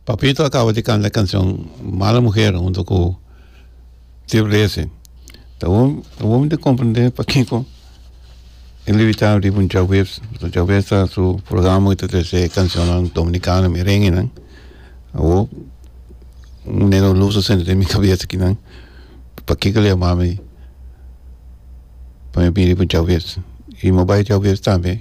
Papito a caba di canta e cancion mala muher hunto cu tio blessing ta wom ta wom ta comprende pakico e limitado riba un djaweb pasobra djaweb ta su programa ta trece e cancionnan dominicano merengue nan awo un negro luz ta sende den mi cabeza kinan pakico a yamami pa mi bira riba un djaweb y mi bai djaweb tambe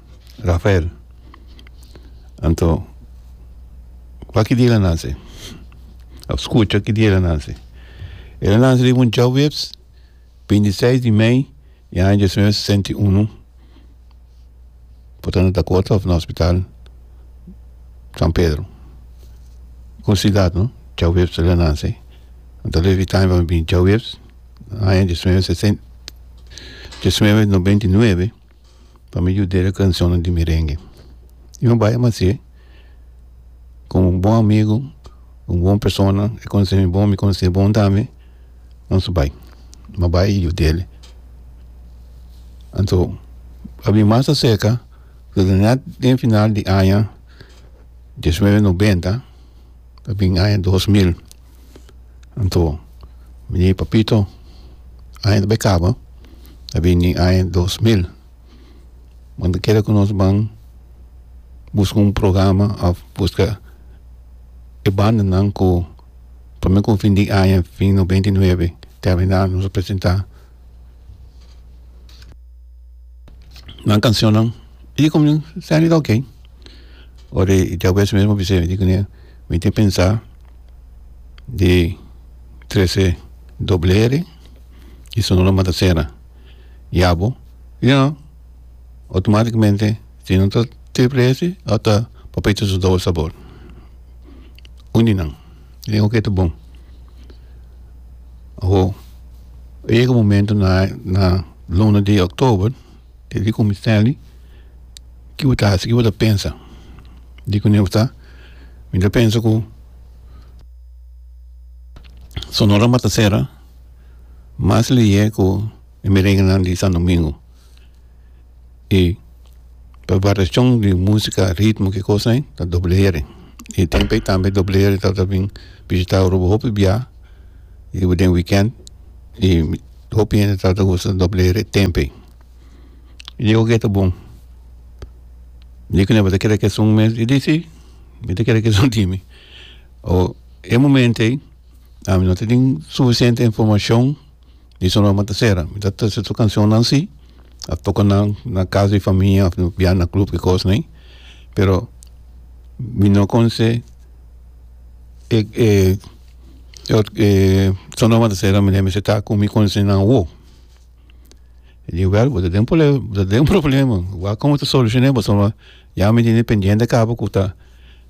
Rafael, Anto, kua ki dia el a nase? A skucha ki dia el a nase. El a nase riba un djaweps, binti seis di mei di aña diesinuebe sesenta i unu. Por ta na Dakota of na hospital San Pedro. Kurosidat no, djaweps el a nase. Anto a lef e taim pa mi bini djaweps, aña diesinuebe sesen, diesinuebe nobenta i nuebe. pa mi yuda el cancionnan di merengue y mi a bay mas si como un bon amigo un bon persona e conoce mi bon mi conoce e bon tambe nos a bay mi a bay yudal anto a bin mas acerca pasobra net den final di aña diecinueve noventa a bin aña dos mil. Anto bini papito aña ta bay caba ta bini aña dos mil bo ta kere cu nos ban busca un programa of busca e bandanan cu prome cu fin di aña fin no beinti nuebe termina nos presenta nan cancionnan y como nen salida oke ora diabesh meen a bisa mi tin pensa. di trece doble eri y sonora matasera yabo y no automaticamente si no ta triple esi o ta papayito su doble sabor uni nan y oke ta bon awo a yega momento na na luna di october. E di cominseli ki bo ta hasi ki bo ta pensa di kune bo ta mi ta pensa ku sonora matasera mas lihé ku e merengenan di santo domingo i pa variashon di musika ritmo ki kos ei ta doble heri i e tempo ei tambe doble heri tabata bin bishitá Aruba hopi bia i den wikènt i Hopi hende ta ta usa doble re tempe y diego ke ta bon dikon ta kere keson mes y di si mi ta kere keson dimi o e momente ami no ta tin suficiente informacion di su loma ta sera mi ta tisi su cancionnan si a toca nan na casa di famia of bia na club kikos nai pero mi no con se e e mi mester ta cu mi conocinan awor y digo wel bo ta den problema bo ta den problema wak como ta solucione bo so ya mi tin pendiente cabo cu ta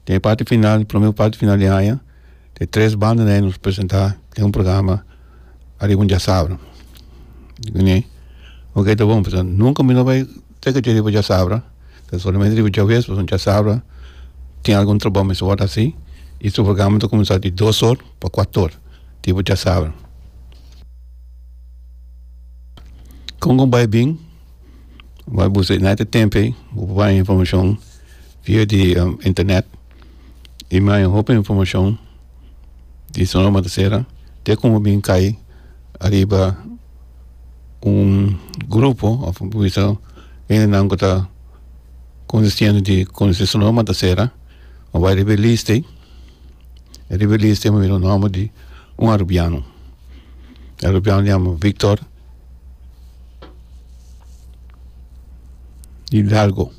den e parti final prome parti final di aña e tres banda ney nos presenta den un programa ariba un diasabra oke ta bon pasobra nunca mi no bay Te ke riba chasabra, ta solamente riba chawes pasobra chasabra tin algun trabou mester wòrdu hasi i su programa ta kuminsá di dos or pa kuatu or riba chasabra. Kon ku bai bin bai buska United Tempe bo por baña informashon via di internet i mi haña hopi informashon di Sonora Matasera te kon bo bin kai ariba un grupo of un bisa hendenan ku ta konsistiendo di konosi su nomber ta sera a bai riba e lista e riba e lista mi mira un nomber di un arubiano e arubiano a yama victor hidalgo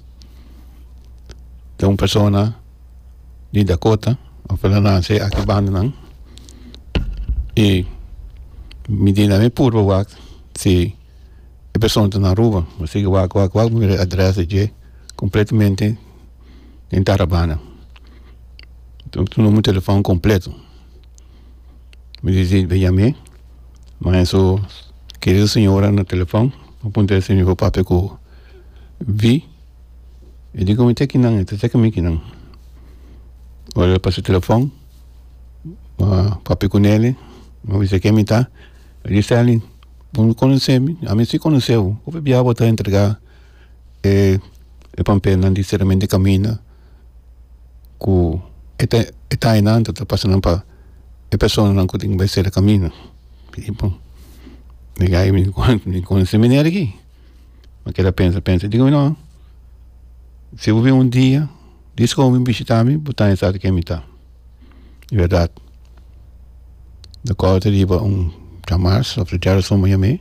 ta un persona di Dakota of el a lansa e aki bandanan y mi di nan mi purba wak si e persona ta na Aruba mi sigue wak wak wak mi mira e address di dje completamente den tarabana mi tuma mi telefon completo mi dici be yame ma eso kerido señora na telefon mi puntra esaki mi papia ku vi. E di komo ta ki nan e ta seki mi ki nan ora lo pasa telefon a papia ku neli a bisa ken mi ta a di stanley bo no konosemi ami si konoseo hopi bia bo ta entrega e pampelnan di seramente caminda ku e ta e ta aña nan ta ta pasa nan pa e personanan ku tin bai sera caminda mi konosé manera aki. Mi a keda pensa pensa i dico, no, si bo bin un dia, dis con bo bin bishita mi, bo ta esaki ken mi ta. I berdad. Mi kòrda riba un chamars of su chara suma yam'e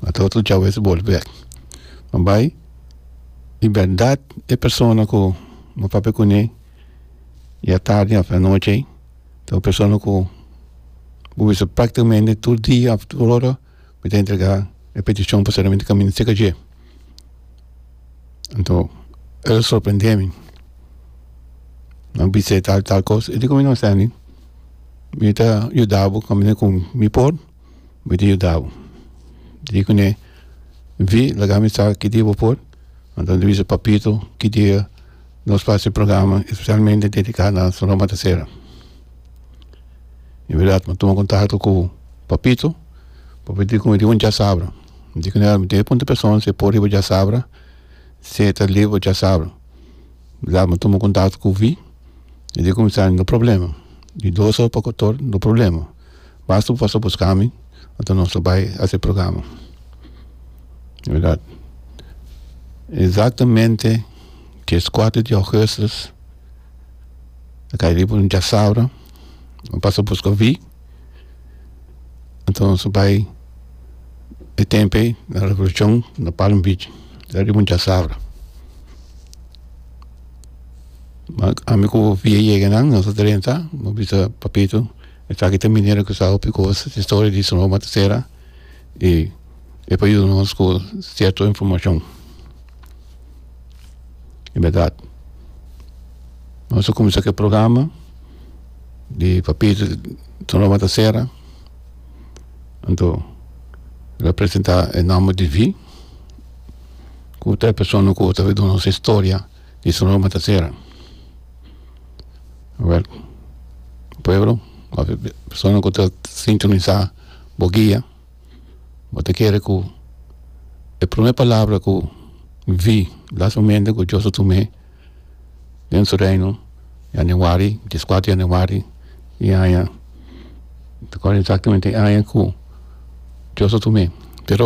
a ta otro chao ves bolbe. Mi bai, i berdad e persona ku mi papia kuné ya tardi of anochi ei, ta un persona ku bo bisa prakticamente tur dia of tur ora mi ta entrega e peticion pasobra mi ta caminda cerca dje anto el sorprende mi a bisa tal y tal cos y dico mi no stanley mi ta yudabo caminda con mi por mi ta yudabo dico ne vi laga mi sa ki dia bo por anto mi ta bisa papito ki dia nos face programa specialmente dedica na Sonora Mata Cera en verdad mi a tuma contacto cu papito papito di cu mi di un diasabra mi di cu nel mi ta puntra e person si e por riba diasabra si e ta live diasabra la mi a tuma contacto cu vi mi di cu mi sandi no problema di dos or pa kotor no problema basta cu pasa buscami enta nos ta bai hasi e programa en verdad exactamente dies kuater di augustus a kai riba un chasaura a pasa buska wi anto aso bai e tempo ei na revolucion na palm beach ariba un chasaura ma ami ku wi a yega nan aso drenta a bisa papito esaki ta minera ku sa hopi kos ta historia di Sonoma Tercera e e por yuda nos ku cierto informacion E berdad nos a cuminsa cu e programa di papito ta loma ta sera anto lo presenta e nomber di wi cu ta e persona cu ta duna nos e storia di su loma ta sera awor pueblo of persona cu ta sintonisa bo guia. bo ta kere ku e prome palabra ku vi la su mente ku dios a tume den su reino yanewari dies kuater yanewari i aña mi ta kòrda exactamente e aña ku dios a tume pero.